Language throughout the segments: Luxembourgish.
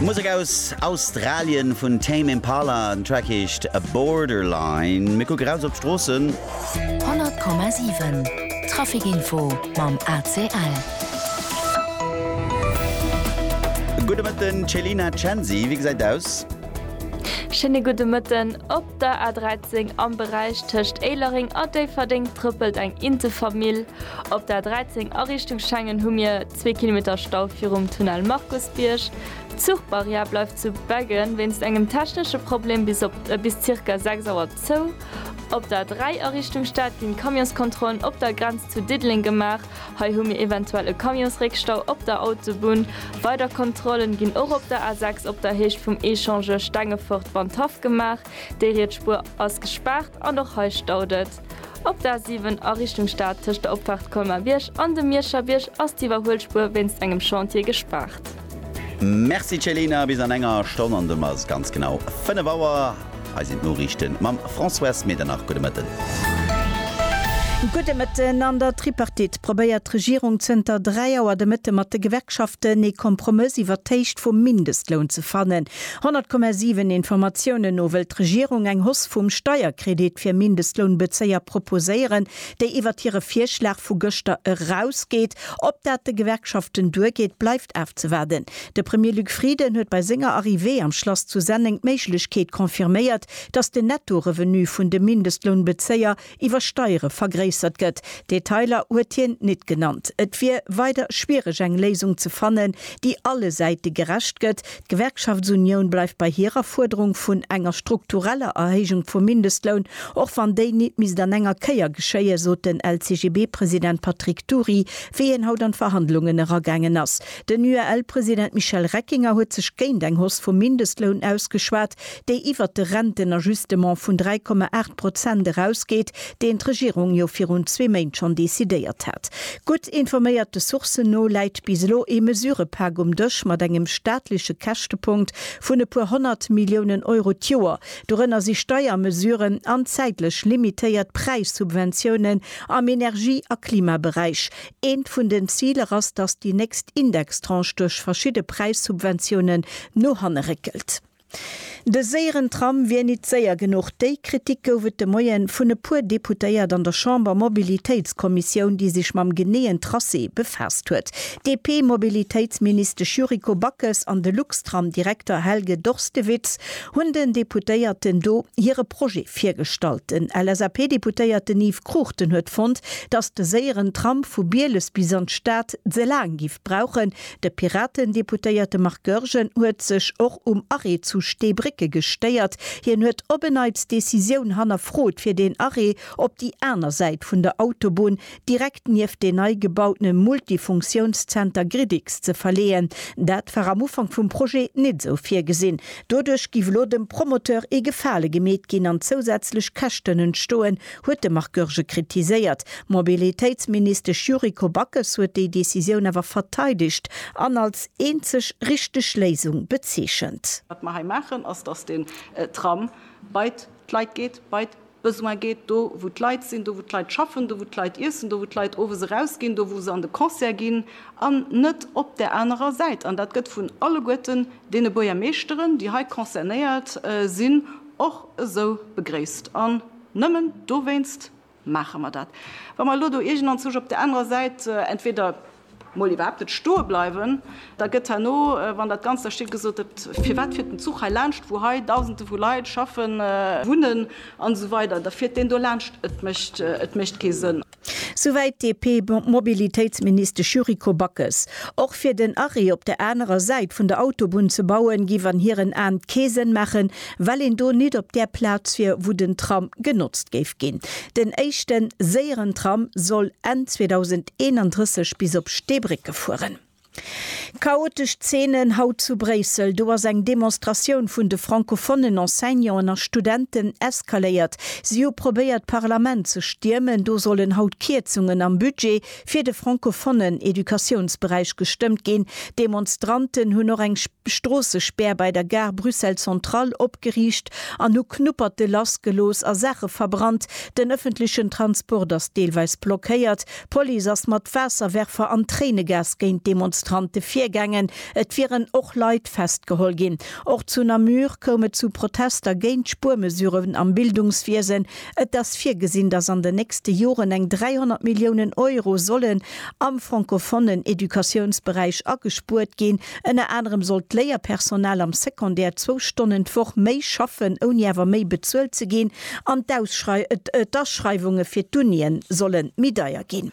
Musek aus Australien vun Tame Impala, den Track heescht Borderline. Mir kucke raus op d'Stroossen. 100,7 Traficinfo mam ACL. Gudde Mëtten Céline Censi, wéi gesäit et aus? Schéine gudde Mëtten, Op der A 13 am Beräich tëscht Éilereng a Déifferdeng trëppelt eng Intefamill op der A 13 a Richtung Schengen hu mir, Zwee Kilometer Stau virum Tunnel Markusbierg. D'Zuchbarrière bleift zu Beggen wéinst engem technesche Problem bis op bis zirka 6 Auer zou. Op der 3 a Richtung Stad ginn d'Camionskontrollen op der Grenz zu Diddeleng gemaach. Hei hu mir eventuell e Camionsréckstau op der Autobunn. Weider Kontrollen ginn och op der A6 op der Héicht vum Echangeur Stengefort-Wandhaff gemaach. Déi riets Spuer ass gespaart an och hei staut et. Op der A7 a Richtung Stad tëscht der Opfaart Colmar-Bierg an dem Mierscher Bierg ass d'Iwwerhuelspuer wéinst engem Chantier gespaart. Merci Céline, bis an enger Stonn an dunn ass et ganz genau 5 Auer. Hei sinn d'Noriichten mam Françoise Medernach. Gudde Mëtten. Gudde Mëtten. An der Tripartite probéiert d'Regierung zënter 3 Auer de Mëtte mat de Gewerkschaften ee Kompromëss iwwert d'Héicht vum Mindestloun ze fannen. 100,7 Informatiounen no wëllt d'Regierung eng Hausse vum Steierkredit fir Mindestlounbezéier proposéieren, déi iwwert hire Virschlag vu gëschter erausgeet. Ob dat de Gewerkschaften duergeet, bleift afzewaarden. De Premier Luc Frieden huet bei senger Arrivée am Schlass zu Senneng d'Méiglechkeet confirméiert, datt den Netto-Revenu vun de Mindestlounbezéier, iwwer Steiere vergréissert gëtt, Detailer huet hien nit genannt. Et wier weider schwiereg eng Léisung ze fannen, déi alle Säite gerecht gëtt. D'Gewerkschaftsunioun bleift bei hirer Fuerderung vun enger struktureller Erhéijung vum Mindestloun, och wann déi nit misst an enger Kéier geschéien, sot den LCGB-President Patrick Dury, wéi hien haut an d'Verhandlungen eragaangen ass. Den UEL-President Michel Reckinger huet sech géint eng Hausse vum Mindestloun ausgeschwat. déi iwwert de Rentenajustement vun 3,8 Prozent erausgeet, deen d'Regierung jo virun zwee Méint schonn decidéiert hat. Gutt informéierte Sourcen no läit bis elo ee Mesurëpak um Dësch mat engem staatleche Käschtepunkt vun e puer honnert Milliounen Euro d'Joer. Dorënner si Steiermesuren an zäitlech limitéiert Präissubventiounen am Energie a Klimaberäich. Eent vun den Ziler ass, datt déi nächst Indextranche duerch verschidde Präissubventiounen no hanne réckelt. De séieren Tram wier nit séier genuch. Déi Kritik gouf et de Moien vun e puer Deputéiert an der Chamber-Mobilitéitskommissioun, déi sech mam geneeën Tracé befaasst huet. D'DP-Mobilitéitsministesch Yuriko Backes an de Luxtram-Direkter Helge Dorstewitz hunn den Deputéierten do hire Projet virgestallt. Den LSAP-Deputéierten Yves Cruchten huet fonnt, datt de séieren Tram vu Bieles bis an d'Stad ze laang giff brauchen, De Piraten-Deputéierte Marc Goergen huet sech och um Arrêt zu Steebrécke gestéiert. Hien huet op en Neits d'Decisioun hannerfrot fir deen Arrêt op déi aner Säit vun der Autobunn, direkt nieft deen nei gebautene Multifunktiounszenter Gridix ze verleeën. Dat war am Ufank vum Projet nit esou virgesinn. Doduerch giff elo dem Promoteur ee Gefale gemeet ginn an zousätzlech Käschten entstoen, huet de Marc Goergen kritiséiert. D'Mobilitéitsministesch Yuriko Backes huet déi Decisioun awer verteidegt an als eenzeg richteg Léisung bezeechent. Wat mer hei maachen, ass, datt den Tram bei d'Leit geet, bei d'Besoin geet, do wou d'Leit sinn, do wou d'Leit schaffen, do wou d'Leit iessen, do wou d'Leit owes eraus ginn, do wou se an de Concert ginn, an net op där anerer Säit. An dat gëtt vun alleguerten deene Buergermeeschteren, déi hei concernéiert sinn, och esou begréisst. Nëmmen dowéinst maache mer dat. Wa mer elo do iergendanzwousch op där anerer Säit entweder mol iwwerhaapt net stoe bleiwen, da gëtt herno, wann dat Ganzt da steet, gesot, Et firwat fiert den Zuch hei laanscht, wou hei Dausende vu Leit schaffen, wunnen an esou weider? Da fiert deen do laanscht. Et mécht kee Sënn. Souwäit d'DP-Mobilitéitsministesch Yuriko Backes. Och fir den Arrêt op der anerer Säit vun der Autobunn ze bauen, giff an hiren Aan kee Sënn maachen, well een do nit op där Plaz wier, wou den Tram genotzt géif ginn. Den éischten séieren Tram soll Enn 2031 bis op Steebrécke fueren. Chaotesch Zeenen haut zu Bréissel, do ass eng Demonstratioun vun de francophonen Enseignanten a Studenten eskaléiert. Si hu probéiert d'Parlament ze stiermen, do sollen haut Kierzungen am Budget fir de francophonen Educatiounsberäich gestëmmt ginn. D'Demonstranten hunn och eng Stroossespär bei der Gare Bruxelles Centrale opgeriicht an hu Knupperte lassgelooss a Saache verbrannt. Den ëffentlechen Transport ass deelweis blockéiert. D'Police ass mat Waasserwerfer an Tréinegas géint d'Demonstrante virgaangen. Et wieren och Leit festgeholl ginn. Och zu Namur koum et zu Protester géint d'Spuermesuren am Bildungswiesen. Et ass virgesinn, datt an den nächste Joren eng 300 Milliounen Euro sollen am francofonnen Educatiounsberäich agespuert ginn. Ënner anerem sollt d'Léierpersonal am Secondaire zwou Stonnen d'Woch méi schaffen, ouni awer méi bezuelt ze ginn. An d'Ausschreiwunge fir d'Unie solle méi deier ginn.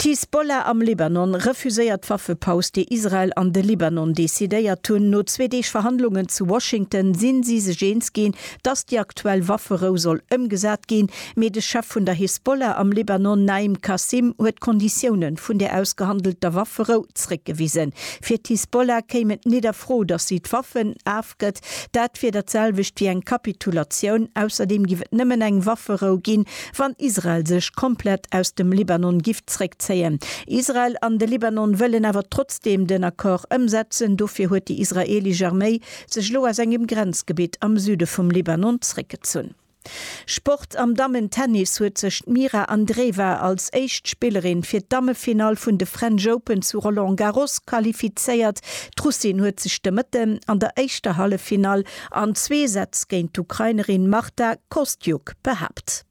D'Hisbollah am Libanon refuséiert d'Waffepaus, déi Israel an de Libanon decidéiert hunn. No zwee Deeg Verhandlungen zu Washington si si sech eens ginn, datt déi aktuell Wafferou soll ëmgesat ginn. Mee de Chef vun der Hisbollah am Libanon, Naim Qassem, huet d'Konditioune vun där ausgehandelter Wafferou zréckgewisen. Fir d'Hisbollah kéim et net a Fro, datt si d'Waffen a. gestoppt gëtt. Dat wier dat selwecht wéi eng Kapitulatioun. Ausserdeem giff et nëmmen eng Wafferou ginn, wann Israel sech komplett aus dem Libanon giff zréckzéien. Israel an de Libanon wëllen awer trotzdeem den Accord ëmsetzen. Dofir huet déi israeelesch Arméi sech elo aus engem Grenzgebitt am Süde vum Libanon zréckgezunn. Sport, Am Dammen-Tennis huet sech d'Mira Andreeva als éischt Spillerin fir d'Dammefinall vun de French Open zu Roland Garros qualifizéiert. D'Russin huet sech de Mëtte an der éischter Halleffinall an zwee Sätz géint d'Ukrainerin Marta Kostyuk behaapt.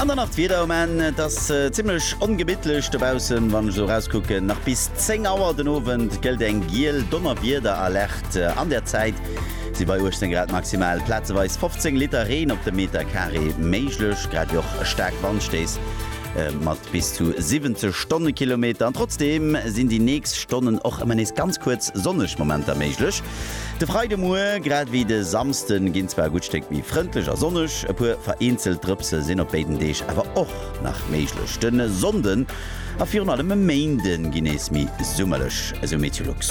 An dann nach d'Wieder, Um Enn et ass zimmlech ongemittlech dobaussen, wann ech esou erauskucken. Nach bis 10 Auer den Owend gëllt eng giel Donnerwiederalerte. An der Zäit si bei 18 Grad maximal plazeweis 15 Liter Reen op de Meter Carré méiglech, grad ewéi och staark Wandstéiss mat bis zu 70 Stonnekilometer. An trotzdeem sinn déi nächst Stonnen och ëmmer nees ganz kuerz sonneg Momenter méiglech. De Freidemuer grad ewéi de Samsde ginn zwar e gutt Stéck méi frëndlech a sonneg, e puer vereenzelt Drëpse sinn op béiden Deeg awer och nach méiglech. De Sonnde A virun allem e Méinde ginn nees méi summerlech, esou Meteolux.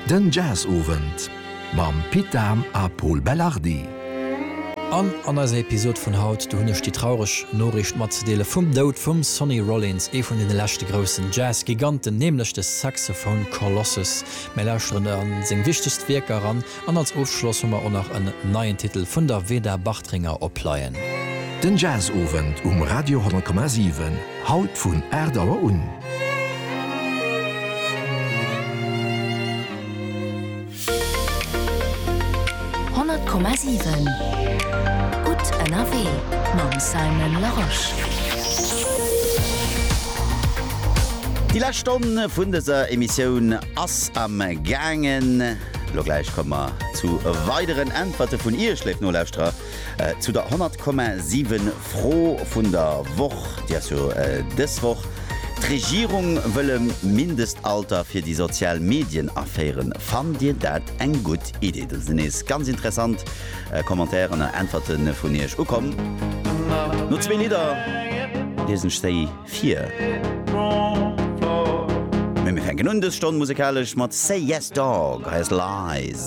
Den Jazzowend mam Pit Dahm a Pol Belardi. An an eiser Episode vun haut, do hunn ech déi traureg Noriicht matzedeele vum Doud vum Sonny Rollins, ee vun deene leschte groussen Jazz-Giganten, nämlech de Saxophone Colossus. Mir lauschteren a seng wichtegst Wierker eran. An als Ofschloss hu mer o nach en neien Titel vun der Veda Bartringer op Pleien. Den Jazzowend um Radio 10,7, haut vun 8 Auer un. Honnert Komma siwen Gutt ënnerwee mam Simon Larosche. Déi lescht Stonn vun dëser Emissioun ass am gaangen. Elo gläich komme mer zu weideren Äntwerte vun Iech, léif Nolauschterer, zu der 100,7 Fro vun der Woch. Déi ass jo dës Woch, D'Regierung wëll e Mindestalter fir déi sozial Medien aféieren. Fannt Dir dat eng gutt Idee? Do sinn nees ganz interessant Commentairen a Äntwerte vun Iech ukomm. No zwee Lidder liesen ech se. Fir. Mir fänken un dës Stonn musekalesch mat Say Yes Dog, hei ass Lies.